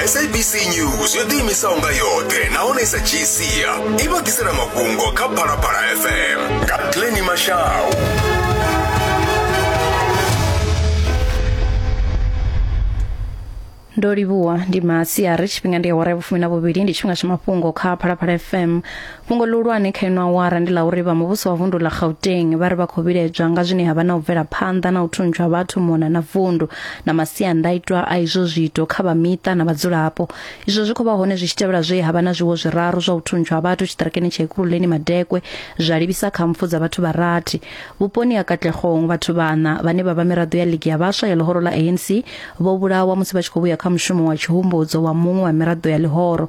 sabc news yo ḓiimisaho nga yoṱhe nahone sa gcia i vha ḓisela mafhungo kha phalaphala fm nga pleni mashau ndo livhuwa ndi masiari tshifhinga ndi awara ya vhufumi na vhuvhili ndi tshifhinga tsha mafhungo kha phalaphala fm Fhungo ḽihulwane kha ino awara ndi ḽa uri vha muvhuso wa vundu ḽa Gauteng vha ri vha khou vhiledzwa nga zwine ha vha na u bvela phanḓa na u thuntsha vhathu mona na vundu na masiandaitwa a izwo zwiito kha vha miṱa na vhadzulapo. Izwo zwi khou vha hone zwi tshi tevhela zwe ha vha na zwiwo zwiraru zwa u thuntsha ha vhathu tshiṱirakeni tsha Ekurhuleni Madekwe zwa livhisa kha mpfu dza vhathu vha rathi. Vhuponi ha Katlehong vhathu vhaṋa vhane vha vha miraḓo ya ligi ya vhaswa ya ḽihoro ḽa ANC vho vhulawa musi vha tshi khou vhuya kha mushumo wa tshihumbudzo wa muṅwe wa miraḓo ya ḽihoro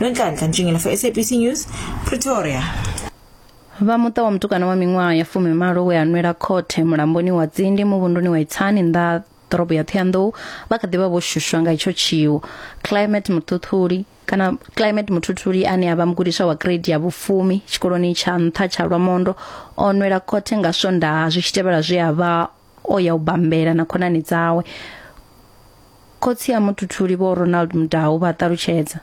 nonhlanhla ntshingilafo sabc news pretoria vha muṱa wa mutukana wa miṅwaha ya fumi malo we a nwela khothe mulamboni wa tsindi muvhunduni wa itsani nnḓa ḓorobo ya ṱhoyandou vha kha ḓivha vho shushwa nga itsho tshiwo climate muthuthuli kana climate muthuthuli ane a vha mugudiswa wa grade ya vhufumi tshikoloni tsha nṱha tsha lwamondo o nwela khothe nga swondaha zwi tshi tevhela zwe a vha o ya u bambela na khonani dzawe khotsi a muthuthuli vho ronald mudau vha ṱalutshedza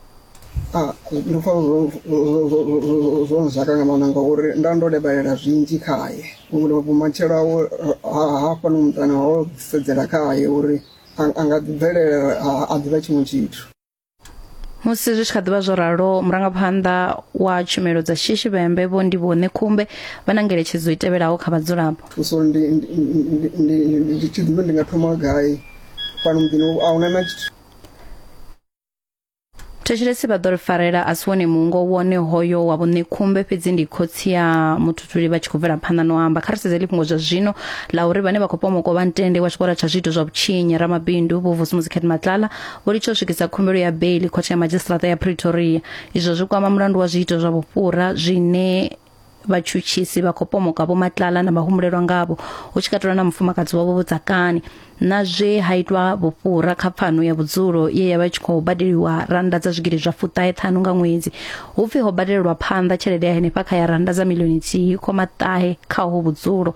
Ah, ndi pfa zwo- zwo- zwo- zwo- zwo nzaka nga maanḓa ngauri nda ndo lebalela zwinzhi khaye uri vhumatshelo awe ha- hafha no muṱana ho sedzela khaye uri a- a nga ḓibvelela a- a ḓivha tshiṅwe tshithu musi zwi tshi kha ḓivha zwo ralo murangaphanḓa wa tshumelo dza shishi vhembe vho ndi vho ṋekhumbe vha na ngeletshedzo i tevhelaho kha vhadzulapo so ndi ndi- ndi- ndi- ndi- ndi tshi ḓivha ndi nga thoma gai fhano muḓini a huna na tshithu thetshelesi vha ḓo ri farela a si wone mungo wone hoyo wa vhuṋekhumbe fhedzi ndi khotsi ya muthuthuli vha tshi khou bvela phanḓa no amba kha ri sedze lifhungo zwa zwino la uri vhane vha khou pomoka vha ntende wa tshikolo tsha zwiito zwa vhutshinyi ramabindu vho vusi muzikheth matlala vho litsha u swikisa khumbelo ya beili khothe ya madzhisiṱiraṱa ya pretoria izwo zwi kwama mulandu wa zwiito zwa vhufhura zwine vhatshutshisi vha khou pomoka vhomatlala na vhahumbulelwa ngavho hu tshi katelwa na mufumakadzi wavho vhudzakani na zwe ha itwa vhufhura kha pfano ya vhudzulo ye ya vha tshi khou badeliwa rannda dza zwigidi zwa fuṱahe ṱhanu nga ṅwedzi hu pfi ho badelelwa phanḓa tshelede ya henefha kha ya rannda dza milioni nthihi khoma ṱahe kha ho vhudzulo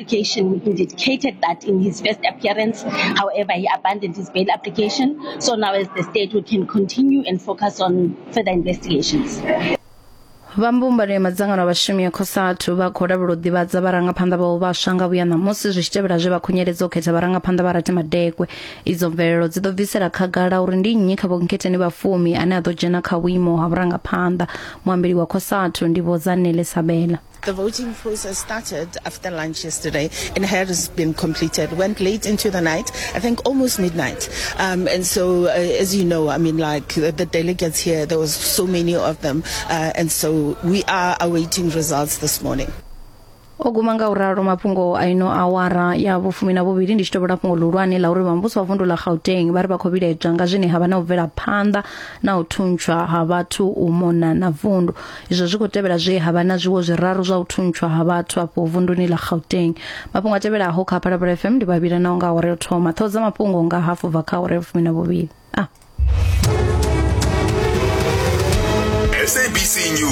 application indicated that in his first appearance, however, he abandoned his bail application. So now as the state, we can continue and focus on further investigations. vha mbumbano ya madzangano a vhashumi ya cosatu vha khou lavhela u ḓivhadza vharangaphanḓa vhao vhaswa nga vhuya ṋamusi zwi tshi tevhela zwe vha khunyeledza u khetha vharangaphanḓa vha rati madekwe idzo mvelelo dzi ḓo bvisela khagala uri ndi nnyi kha vhonkhetheni vha fumi ane a ḓo dzhena kha vhuimo ha vhurangaphanḓa muambeli wa cosatu ndi vho zanele sabela The voting process started after lunch yesterday and has been completed. Went late into the night, I think almost midnight. Um, and so, uh, as you know, I mean, like the, the, delegates here, there was so many of them. Uh, and so we are awaiting results this morning. o guma nga u ralo mafhungo a ino awara ya vhufumi na vhuvhili ndi tshi tovhola fhungo ḽihulwane ḽa uri vhambuso wa vundu ḽa gauteng vha ri vha khou vhilaedzwa nga zwine ha vha na u bvela phanḓa na u thuntswa ha vhathu u mona na vundu izwo zwi khou tevhela zwe ha vha na zwiwo zwiraru zwa u thuntshwa ha vhathu afho vunduni ḽa gauteng mafhungo a tevhelaho kha phalaphala fm ndi vhavhila nao nga awara yo thoma ṱhoho dza mafhungo nga hafu bva kha awara ya vhufumi na vhuvhili a ah. sabc news